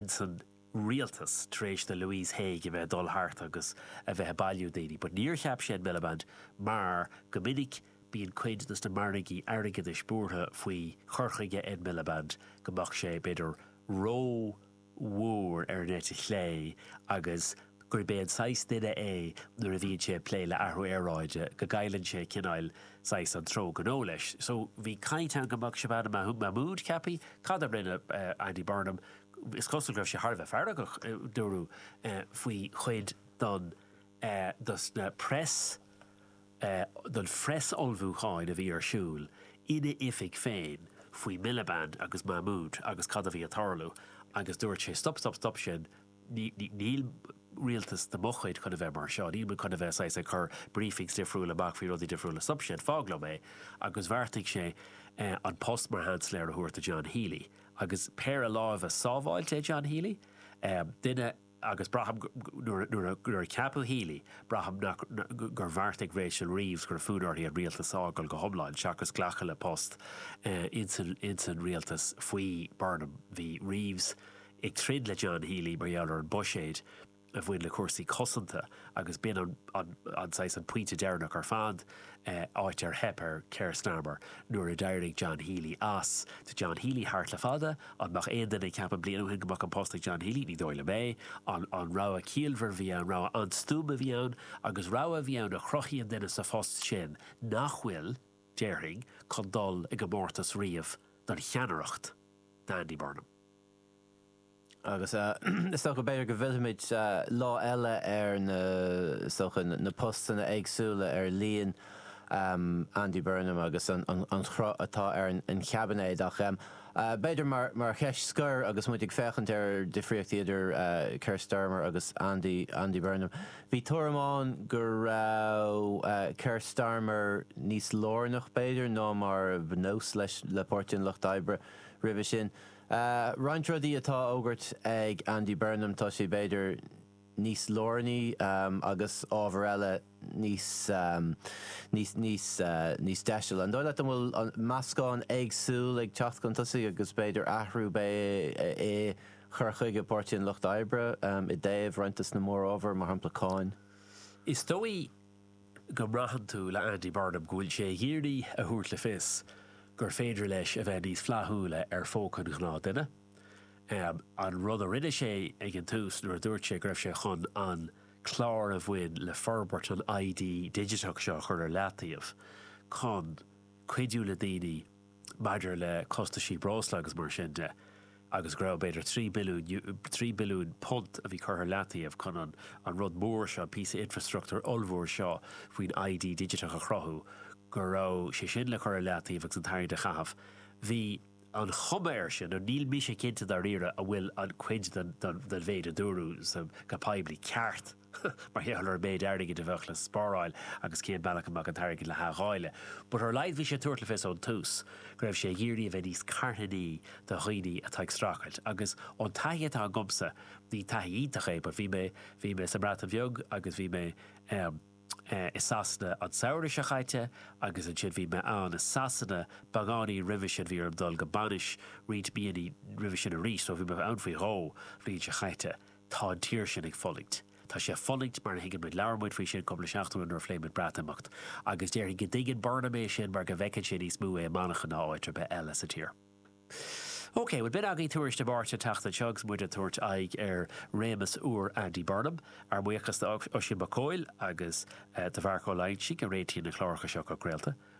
sa rialtas tar éis do Louise Haigh a bheith ag dul thart agus a bheith ag bailiú daoine but níor cheap sé Ed Miliband mar go minic bíonn cuid dos na margaí airgeadais buartha faoi chur chuige Ed Miliband go mbeadh sé b'fhéidir rómhór ar an eite chlé agus gurb é an saghas duine é nuair a bhíonn sé ag plé le athrú aeráide go gcailleann sé cineáil, saghas an treo gnó leis. So bhí caint ann go mbeadh Shabana Mahmood ceapaithe. Cad a rinne Andy Burnham? Is cosúil go raibh sé thar a bheith feargach, dúradh, faoi chuid don dos na press don phress ullmhúcháin a bhí ar siúil ina oifig féin faoi Miliband agus Mahmood agus cad a bhí ag tarlú agus dúirt sé stop stop stop sin Níl rialtas de mo chuid chun a bheith mar seo. Níl muid chun a bheith saghas ag cur briefings difriúla amach faoi rudaí difriúla. Stopaigí, fág liom é. Agus bheartaigh sé an post mar Sheansailéir a thabhairt do John Healey. Agus péire láimhe sábháilte é John Healey. Duine, agus braithim nuair a ceapadh Healey, braithim gur bheartaigh Rachel Reeves go raibh fonn uirthi an rialtas a fhágáil go hiomlán seachas glacadh le post ins an rialtas faoi Burnham. Bhí Reeves ag troid le John Healey mar gheall ar an buiséid a bhain le cúrsaí cosanta agus b'in an an saghas an pointe deireanach ar fad, áit ar theip ar Keir Starmer nuair a d'éirigh John Healey as. Tá John Healey thart le fada. An mbeadh aon duine ag ceapadh bliain ó shin go mbeadh an post ag John Healey? Ní dóigh liom é. An-rogha ciallmhar a bhí ann, rogha an-stuama a bhí ann agus rogha a bhí ann a chruthaíonn duine sa phost sin nach bhfuil, déarfainn, chun dul i gcomórtas riamh don cheannaireacht d'Andy Burnham. Agus is dócha b'fhéidir go bhfillfimid lá eile ar na, is dócha, na postanna éagsúla, ar líon Andy Burnham agus an cruth atá ar an chaibinéad. Ach b'fhéidir mar cheist scoir agus muid ag féachaint ar difríochtaí idir Keir Starmer agus Andy Burnham. Bhí tuairim ann go raibh Keir Starmer níos lárnach b'fhéidir ná mar ba nós leis le Páirtí an Lucht Oibre roimhe sin. Roinnt rudaí atá á fhógairt ag Andy Burnham, tá sé b'fhéidir níos lárnaí agus ábhar eile níos deisile. An dóigh leat an bhfuil meascán éagsúil ag teacht chun tosaigh agus b'fhéidir athrú a bheidh i chur chuige Páirtí an Lucht Oibre i dtaobh roinnt dos na mórábhair, mar shampla cáin? Is dóigh go mbraitheann tú le Andy Burnham go bhfuil sé ag iarraidh a thabhairt le fios gur féidir leis a bheith níos flaithiúla ar phóca an ghnáthdhuine. An rud a rinne sé ag an tús nuair a dúirt sé go raibh sé chun an clár a bhain le forbairt an ID digiteach seo a chur ar leataobh chun cuidiú le daoine maidir le costaisí breosla agus mar sin de agus go raibh b'fhéidir trí billiúin, trí billiúin punt a bhí curtha ar leataobh chun an, an rud mór seo, an píosa infreastruchtúir ollmhór seo faoin ID digiteach a chruthú, go raibh sé sin le cur ar leataobh agus an t-airgead a chaitheamh. Bhí an chuma air sin, níl mise cinnte dáiríre an bhfuil an, cuid den, den, den mhéid a dúradh sa, go poiblí, ceart, mar gheall ar an méid airgid a bheadh le spáráil agus cén bealach a mbeadh an t-airgead le hathdháileadh. But ar a laghad bhí sé ag tabhairt le fios ón tús go raibh sé ag iarraidh a bheith níos carthanaí do dhaoine atá ag streachailt agus ón taithí atá agamsa, ní taithí iontach é but bhí mé, bhí mé sa mBreatain Bheag agus bhí mé i Sasana an samhradh seo chaite agus ansin bhí mé ann i Sasana beagáinín roimhe sin, bhí orm dul go bainis roinnt míonna roimhe sin arís so bhí mé ann faoi dhó bhliain seo chaite. Tá an tír sin ag fulaingt. Tá sé ag fulaingt mar a thuigeann muid. Labhair muid faoi sin cúpla seachtain ó shin nuair a phléigh muid Breatimeacht. Agus déarfainn go dtuigeann Burnham é sin mar go bhfeiceann sé níos mó é i Manchain ná áit ar bith eile sa tír. OK, bhuel b'in agaibh Tuairisc na Máirte an tseachtain seo agus muid ag tabhairt aghaidh ar réimeas úr Andy Burnham. Ár mbuíochas do Oisín Mac Cóil agus do Mharc Ó Loingsigh a réitíonn na cláracha seo chun craolta.